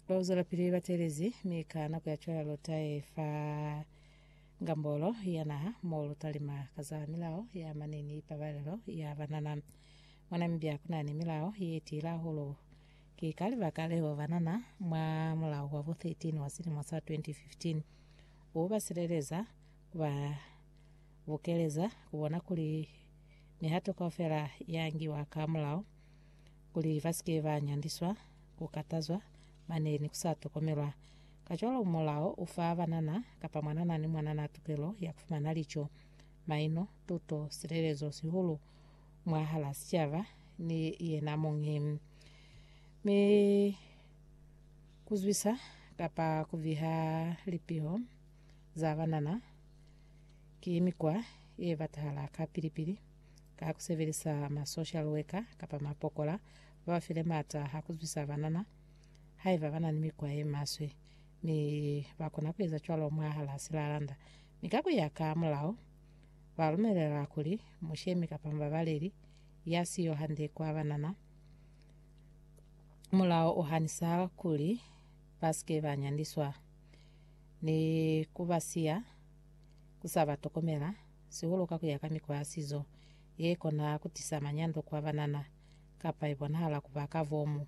Ba uzwelapili ba teelezi, mi ka nako ya cwala lu tae fa ngambolo ya naha mo lu talima ka za milao ya mane ni ipabalelo ya banana. Mwa Namibia ku na ni milao ye tila hahulu. Ki ka libaka leo banana mwa mulao wa bo 13 wa silimo sa 2015 u ba sileleza, ku ba bukeleza, ku bona kuli mihato kaufela ya ngiwa ka mulao. kuli ba si ke ba nyandiswa, ku katazwa, mane ni ku sa tokomelwa. Kacwalo Mulao u fa banana kapa mwanana ni mwanana tukelo ya ku fumana lico, maino, tuto, silelezo, sihulu mwahal'a sicaba ni yena muñi. Mi ku zwisa kapa ku viha lipiho za banana ki mikwa ye batahala kapili-pili. ka ku sebelisa ma social worker kapa mapokola ba ba file maata a ku zwisa banana haiba ba na ni mikwa ye maswe, mi ba kona ku eza cwalo mwahal'a silalanda. Mi ka ku ya ka mulao, ba lumelela kuli mushemi kapa mubabaleli ya siyo hande kwa banana, mulao u hanisa kuli ba si ke ba nyandiswa ni ku ba siya ku sa ba tokomela, sihulu ka ku ya ka mikwa ya sizo ye kona ku tisa manyando ku ba banana, kapa i bonahala ku ba ka bomu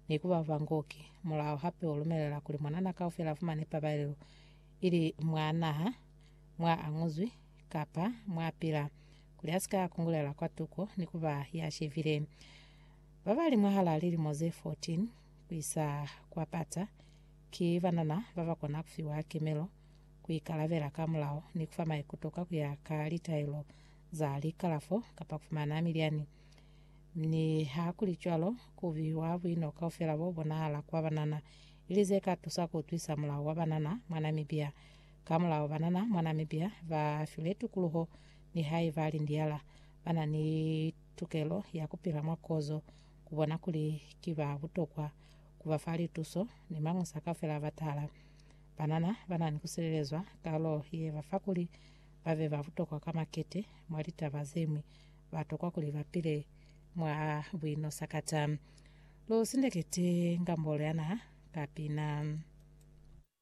ni ku ba bangoki. Mulao hape u lumelela kuli mwanana kaufela a fumane pabalelo, ili mwa naha mwa a nguzwi kapa mwa pila, kuli a si ka kungulela kwa tuko ni ku ba ya shevile. Ba ba li mwahal'a lilimo ze 14 ku isa kwa pata ki banana ba ba kona ku fiwa kemelo ku ikalabela ka mulao ni ku fa maikuto ka ku ya ka litaelo za likalafo kapa ku fumana milyani. Ni ha ku li cwalo, ku biwa buino kaufela bo bonahala kwa banana, ili ze ka tusa ku utwisa mulao wa banana mwa Namibia. Ka mulao, banana mwa Namibia ba filwe tukuluho ni haiba lindiala, ba na ni tukelo ya ku pila mwa kozo. Ku bona kuli ki ba butokwa, ku ba fa lituso ni mañusa kaufela a batala. Banana banani kusilelezwa kalo yebafa kuli babe babutokwa ka makete mwa litaba zeñwi, batokwa kuli bapile mwa buino sakata. Lu sindekete Ngambolo ya Naha ka pina.